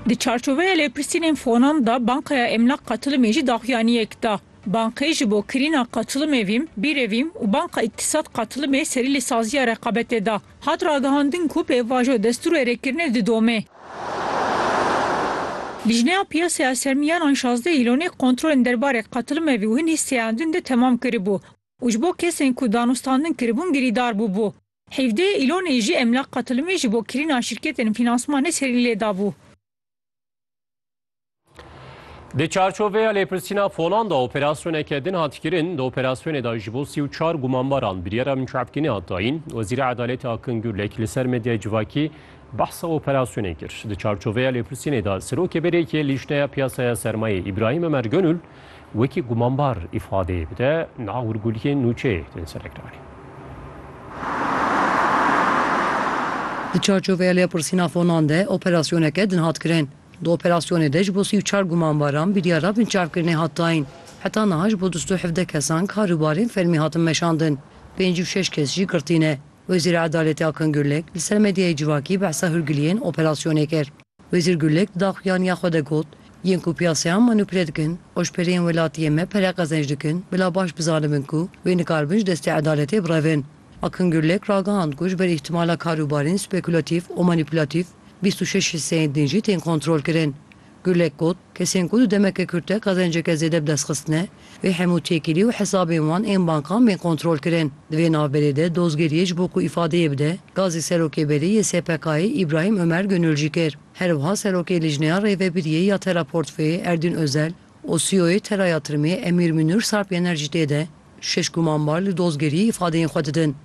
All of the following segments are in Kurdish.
Di çarçoveya lêpirsînên Fonam de Bankaya Emlak Qatilimê jî daxuyaniyek da. Bankê ji bo kirîna qatilimê vîm, bîrevîm û Banka Îktisad Qatilimê serî li saziya reqabetê de. Hat ragihandin ku pêvajo destûrê rêkirinê didome. Lijneya Piyasaya Sermiyan an şazdeh îlonê kontrolên derbarê qatilimê vî û hin hîsseyandin de temam kiribû û ji bo kesên ku danûstandin kiribûn girîdar bûbû. Hevdeh Îlonê jî Emlak Qatilimê ji bo kirîna şîrketên fînansmanê serî lê dabû. Di çarçoveya lêpirsîna fonan de operasyoneke din hat kirin. Di operasyonê de ji bo sî û çar gumanbaran biryara mincavkînê hat dayîn. Wezîra Edalêtê Akın Gürlek li ser medyaya civakî behsa operasyonê kir. Di çarçoveya lêpirsînê de Serokê BDK'ê Lîjneya Piyasaya Sermayê Îbrahim Ömer Gönül wekî gumanbar îfadeyê bide nav û guliyên nûçeyê tên serekdarîn. Di çarçoveya lêpirsîna fonan de operasyoneke din hat kirin. Di operasyonê de ji bo sî û çar gumanbaran biryara binçavkirinê hat dayîn. Heta niha ji bo du sed û hevdeh kesan kar û barên fermî hatin meşandin. Pênc û şeş kes jî girtî ne. Wezîra Edaletê Akın Gürlek li ser medyayê civakî behsa hûrgiliyên operasyonê kir. Wezîr Gulek di daxuyaniya xwe de got, Yên ku piyasayan manupule dikin, oşpereyên welatiyê me pere qezenc dikin, bila baş bizanibin ku wê nikaribin ji destê edaletê birevin. Akin Gulek ragihand ku ji ber îhtîmala karûbarên spekulatîf û manupulatif, bîst û şeş hîsseyên din jî tên kontrolkirin. Gulek got, Kesên ku di demeke kurt de qezenceke zêde bi dest xistine, Vê hemû têkilî û hesabên wan ên bankan bên kontrolkirin. Di vê navberê de dozgeriyê ji bo ku îfadeyê bide, gazê Serokê Berê yê SPK'ê Îbrahîm Omer Gonul jî kir. Herwiha Serokê Lijneya Rêvebiriyê ya Tera Portfeyê Erdîn Ozel û CEO'yê Tera ya Tirmê Emîr Mînûr Sarp Yener jî tê de şeş gumanbar li dozgeriyê îfadeyên xwe didin.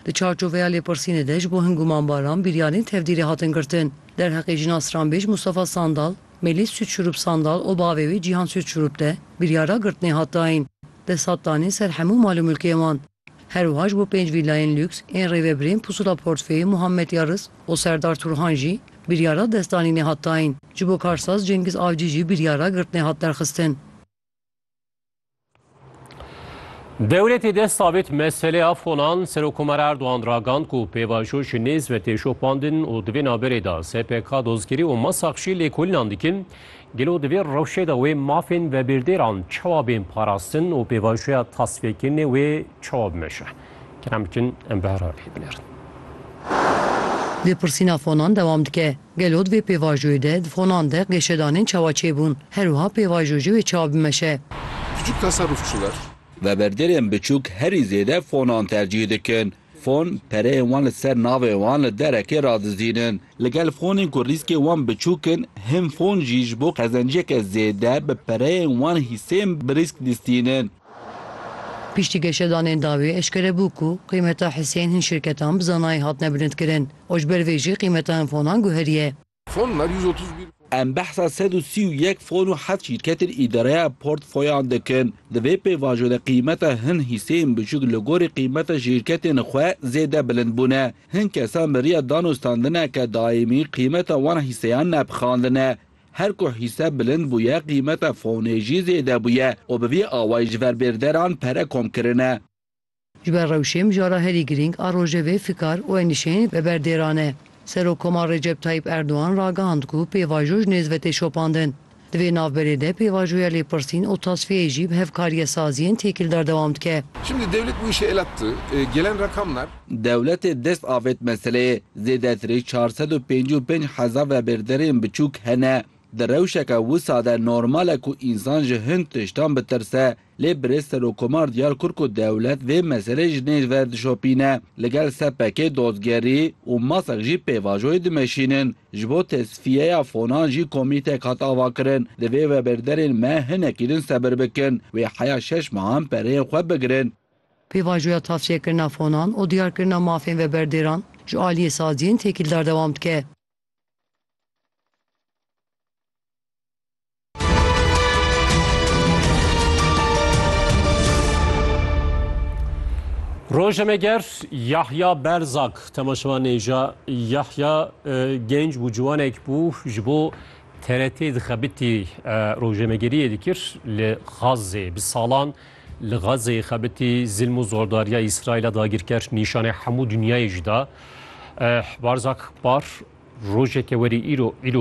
Di çarçoveya lêpirsînê de ji bo hin guman baran biryarên tevdîrê hatin girtin. Derheqê jina stranbêj Mustafa Sandal, Mêlîs Sûtşurûp Sandal û bavê wê Cîhan Sûtşurûp de biryara girtinê hat dayîn. Dest hat danîn ser hemû mal û milkê wan. Her wiha ji bo pênc vîllayên lûks ên rêvebirên Pusula Portfê, Muhammed Yarris û Serdar Turhan jî biryara destdanînê hat dayîn. Ji bo karsaz Cengiz Avcî jî biryara girtinê hat derxistin. Dewletê dest sabit meseleya fonan Serokomar Erdoğan ragand ku pêvajo ji nêz ve tê şopandin û di vê naberê de SPK, Dozkirî û Masak jî lêkolînan dikin. Gelo di vê rewşê de wê mafên vebêrdêran çawa bên parastin û pêvajoya tasfêkirinê wê çawa bimeşe? Kerem bikin em bi herhalê binêrin. Lêpirsîna fonan dewam dike. Gelo di vê pêvajoyê de di fonan de qêşedanên çawa çêbûn? Her wiha pêvajo jî wê çawa bimeşe. Küçük tasarruf çi ver? Veberderên biçûk herî zêde fonan tercîh dikin. Fon, pereyên wan li ser navê wan li derekê radizînin. Li gel fonên ku rîskê wan biçûk in, hin fon jî ji bo qezenciyeke zêde bi pereyên wan hîsên bi rîsk distînin. Piştî geşedanên dawî eşkere bû ku qîmeta hiseyên hin şirketan bi zanayî hatine bilindkirin û ji ber vê jî qîmeta hin fonan guheriye. Em behsa sed û sî û yek fon û heft şîrketên îdareya portfoyan dikin. Di vê pêvajo de qîmeta hin hîseyên biçûk li gorî qîmeta şîrketên xwe zêde bilind bûne. Hin kesan bi riya danûstandineke daîmî qîmeta wan hîseyan nepixandine. Her ku hîse bilind bûye qîmeta fonê jî zêde bûye û bi vî awayî ji ver bêrderan pere kom kirine. Ji ber rewşê mijara herî girîng a rojevê fikar û enîşeyên ve berdêran e. Serokkomar Recep Tayyîp Erdogan ragihand ku pêvajo ji nêzve tê şopandin. Di vê navberê de pêvajoya lêpirsîn û tasfiyeyê jî bi hevkariyesaziyên têkildar dewam dike. Dewletê dest avêt meseleyê, zêdetirî çar sed û pêncî û pênc hezar vebêrderên biçûk hene. Di rewşeke wisa de normal e ku însan ji hin tiştan bitirse. Lê birêz Serokkomar diyar kir ku dewlet vê meselê ji nêz ver dişopîne. Li gel SPK'ê dozgerî û masek jî pêvajoyê dimeşînin. Ji bo tesfiyeya fonan jî komîtek hat avakirin. Divê webêrderên me hinekî din sebir bikin. Wê heya şeş mehan pereyên xwe bigirin. Pêvajoya tavçeyekirina fonan û diyarkirina mafên veberdêran ji aliyê saziyên têkîldar dewam dike. Rojnameger Yahya Berzak temaşevan nêja Yahya genc bû ciwanek bû ji bo TRT dixebitî rojnamegeriyê dikir li Xazzê bi salan Li Gazeyê xebitî zilm û zordariya Îsraîla dagirker nîşanê hemû dinyayê jî da. Barzak Bar rojeke werî îro îro